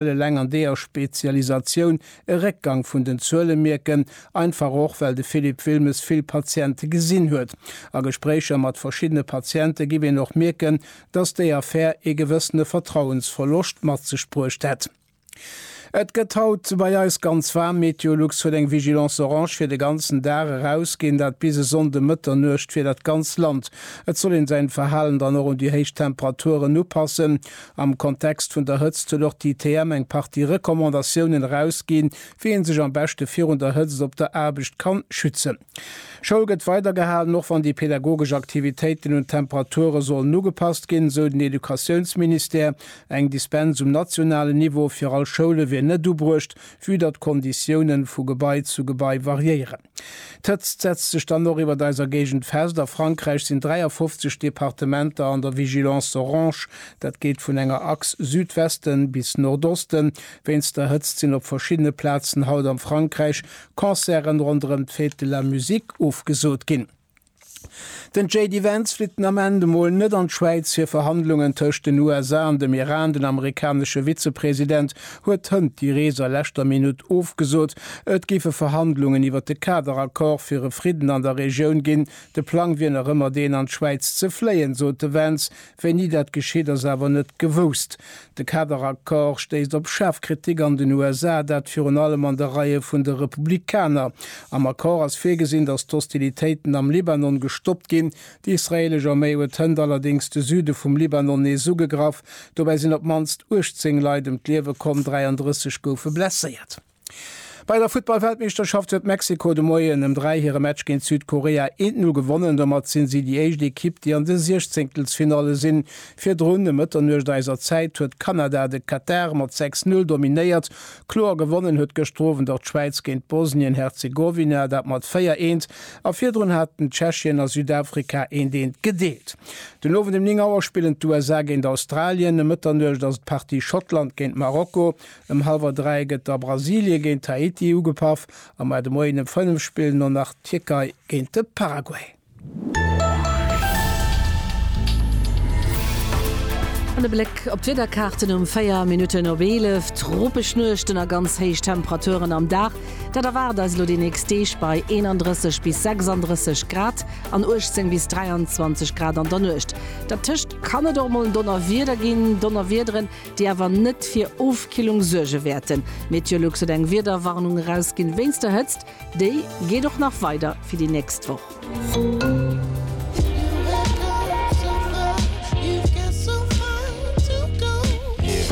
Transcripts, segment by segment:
wëll eleng an deeër Spezialisatioun e Réckgang vun den Zuele mierken, einfach och well de Philippe Wilmes vill Patiente gesinn huet. A Gespréicher mat verschiddene Patiente giff een och mierken, datt déi Affär ee gewëssene Vertrauensverloscht mat sech bruecht hätt. Et gëtt haut bei eis ganz waarm. Meteolux huet eng Vigilance orange fir de ganzen Dag erausginn, dat bis e Sonnde Mëtternuecht fir dat ganz Land. Et soll een säin Verhalen dann och un déi héich Temperaturen upassen. Am Kontext vun der Hëtzt huet och d'ITM eng Partie Recommandatiounen erausginn, wéi een sech am beschte virun der Hëtzt op der Aarbecht kann schützen. Schoul gëtt weidergehalen, och wann déi pedagogesch Aktivitéiten un d'Temperature sollen ugepasst ginn, esou den Educatiounsministère. Eng Dispens um nationalen Niveau fir all Schoule wier net ubruecht, vue datt d'Konditiounen vu Gebai zu Gebai variéieren. D'Hëtzt setzt sech dann och iwwert eiser Géigend fest. A Frankräich sinn 53 Departementer an der Vigilance orange. Dat geet vun enger Achs Südwesten bis Nordosten. Wéinst der Hëtzt sinn op verschiddene Plazen haut am Frankräich Concerten ronderëm d'Fête de la Musique ofgesot ginn. Den JD Vance flitt den Ament emol net an d'Schwäiz fir Verhandlungen tëscht den USA an dem Iran. Den amerikanesche Vizepresident huet hënt déi Rees a leschter Minutt ofgesot. Et géife Verhandlungen iwwer de Kaderaccord fir e Fridden an der Regioun ginn. De Plang wier nach ëmmer deen an d'Schwäiz ze fléien, sot de Vance. Wéini dat geschitt, ass awer net gewousst. De Kaderaccord stéisst op schaarf Kritik an den USA, dat virun allem an de Reie vun de Republikaner. Am Accord ass virgesinn, datt d'Hostilitéiten am Libanon gestoppt ginn. Déi israeelesch Arméi huet hënt allerdéngs de Süde vum Libanon nees ugegraff. Dobäi sinn op d'mannst 18 Leit ëm d'Liewe komm, 33 goufe blesséiert. Bei der Futtballweltmeeschterschaft huet Mexiko de Moien ëm 3 hire Match géint Südkorea 1, 0 gewonnen. Domat sinn si déi éischt Ekipp, déi an de Siechzéngtelsfinalle sinn. Virdrun, ëm Mëtternuecht eiser Zäit, huet Kanada de Katar mat 6, 0 dominéiert. Kloer gewonnen huet gëschter Owend och d'Schwäiz géint Bosnien-Herzegowina, dat mat 4, 1. A virdrun haten Tschechien a Südafrika eent, eent gedeelt. Den Owend ëm 9 Auer spillen d'USA géint Australien. Ëm Mëtternuecht ass et d'Partie Schottland géint Marokko. Ëm hallwer 3 gëtt da Brasilie géint d'Haiti ugepaff a mar de Moien ëm 5 spillen elo nach d'Tierkei géint de Paraguay. An e Bléck op d'Wiederkaarten um 4 Minutten op 11, Tropesch Nuechten a ganz héich Temperaturen am Dag, dat erwaart eis elo déi nächst Deeg bei 31 bis 36 Grad an 18 bis 23 Grad an der Nuecht. Dertëscht kann et och mol en Donnerwieder ginn, Donnerwiederen déi awer net fir Ofkillung suerge wäerten. Meteolux huet eng Wiederwarnung erausginn wéinst der Hëtzt. Déi geet och nach weider fir déi nächst Woch.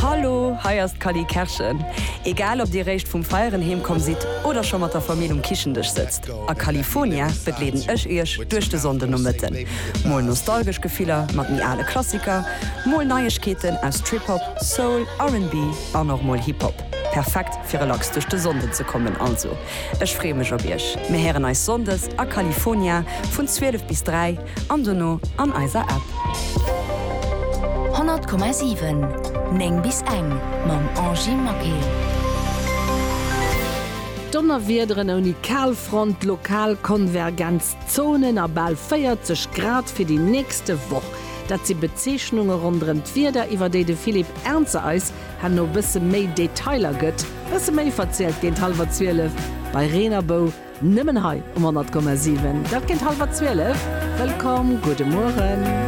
Hallo, hei ass d'Cally Kerschen. Egal ob dir réischt vum Feieren heemkomm sidd oder scho mat der Famill um Kichendësch sëtzt. A California begleeden ech iech duerch de Sonndenomëtten. Mol nostalgesch Gefiller mat méi ale Klassiker, mol Neiegkeeten aus Trip-Hop, Soul, RnB an och mol Hip-Hop. Perfekt fir relax duerch de Sonnden ze kommen. Also ech freeë mech op iech. Mir héieren eis Sonndes a California vun 12 bis 3 an dono an eiser App. 100,7 9 bis eng mam Angy Maquet. Donnerwiederen ouni Kalfront, lokal Konvergenzzonen a bal 40 Grad fir déi nächste Woch. Dat si Bezeechnunge ronderëm d'Wieder, iwwer déi de Philippe Ernzer eis herno bësse méi Detailer gëtt. Bësse méi verzielt géint hallwer 12 bei Reen a Bou, nëmmen hei um 100,7. Dat géint hallwer 12. Wëllkomm, gudde Mueren.